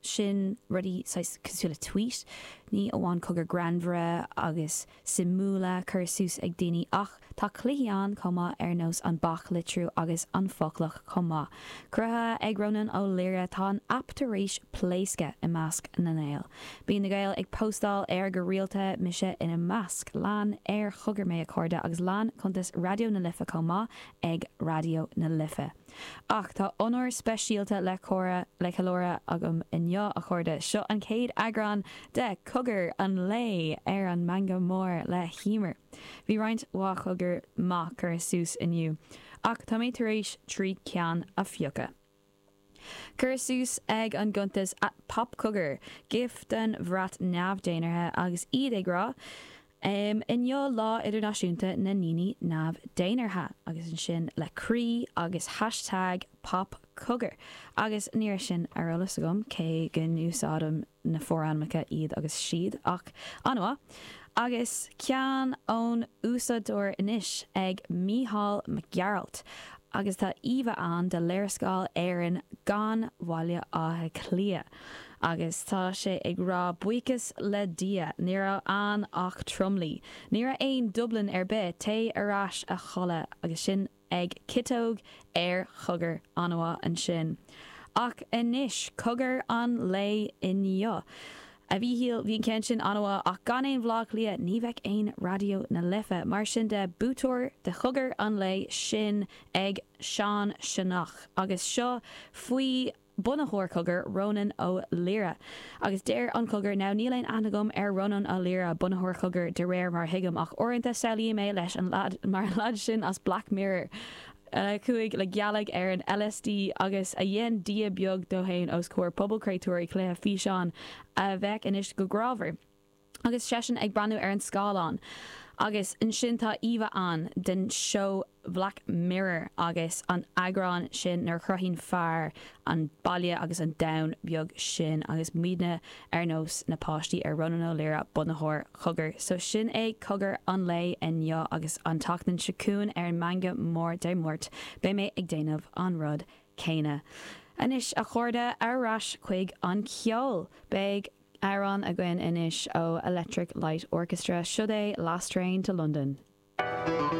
sin rudaí saghas cosúil le tweet, ní amháin cogar greannmhar agus suimiúla curtha suas ag daoine ach tá cluichí ann chomh maith ar nós an Beach Litriú agus an Foclach chomh maith. Cruthaithe ag Rónán Ó Laoire, tá an aip tar éis pléascadh i measc na nGael. Bíonn na Gaeil ag póstáil air go rialta, mise ina measc, lean ar chogar mé a chairde agus lean cuntas Raidió na Life chomh maith ag Raidió na Life. Ach tá onóir speisialta le ceiliúradh agam inniu, a chairde. Seo an chéad eagrán de Cogar an Lae ar an Meangadh Mór le hEimear. Bhí roinnt mhaith cogar maith curtha suas inniu, ach tá mé tar éis trí ceann a phiocadh. Curtha suas ag an gcuntas at popcogar gif den bhrat neamh-dhénártha agus iad ag rá Inniu Lá Idirnáisiúnta na nDaoine Neamh-Dhénártha agus ansin le croí agus hashtag popcogar agus ní raibh sin ar eolas agam cé go n-úsáidim na forainmeacha iad agus siad ach an-mhaith agus ceann ón úsáideoir anois at Mícheál Mac Gearailt agus tá íomha ann de léarscáil Éireann gan Bhaile Átha Cliath. Agus tá sé ag rá buíochas le Dia, ní raibh ann ach tromluí. Ní raibh aon Dublin ar bith, téigh ar ais a chodladh agus sin at ciotóg ar cogar an-mhaith ansin. Ach anois, cogar an lae inniu. A Mhíchíl, bhí an ceann sin an-mhaith ach gan aon Bhleá Cliath ní bheadh aon Raidió na Life. Mar sin de, buaiteoir de chogar an lae sin ag Seán Seanach agus seo faoi bunaitheoir Cogar, Rónán Ó Laoire. Agus deir an Cogar, now níl aon aithne agam ar Rónán Ó Laoire, bunaitheoir Cogar, de réir mar a thuigim, ach uaireanta samhlaím é mar an lead sin as Black Mirror, a chuaigh le gealaigh ar an LSD agus a dhein dia beag de fhéin os comhair pobal créatúirí cluiche físeáin a bheathú go grámhar. Agus seisean ag breathnú ar an scáileán. Agus ansin tá íomha ann den seó Bhlack Mirror agus an eagrán sin nuair a chruthaíonn fear an baile agus an domhan beag sin agus muidne ar nós na páistí ar Rónán Ó Laoire bunaitheoir Cogar. So sin é Cogar an lae inniu agus an tseachtain seo chugainn ar an Meangadh Mór Dé Máirt beidh mé ag déanamh an rud céanna. Anois a chairde, ar ais chuig an cheol. Beidh. Amhrán againn anois ó Electric Light Orchestra, siod é Last Train to London.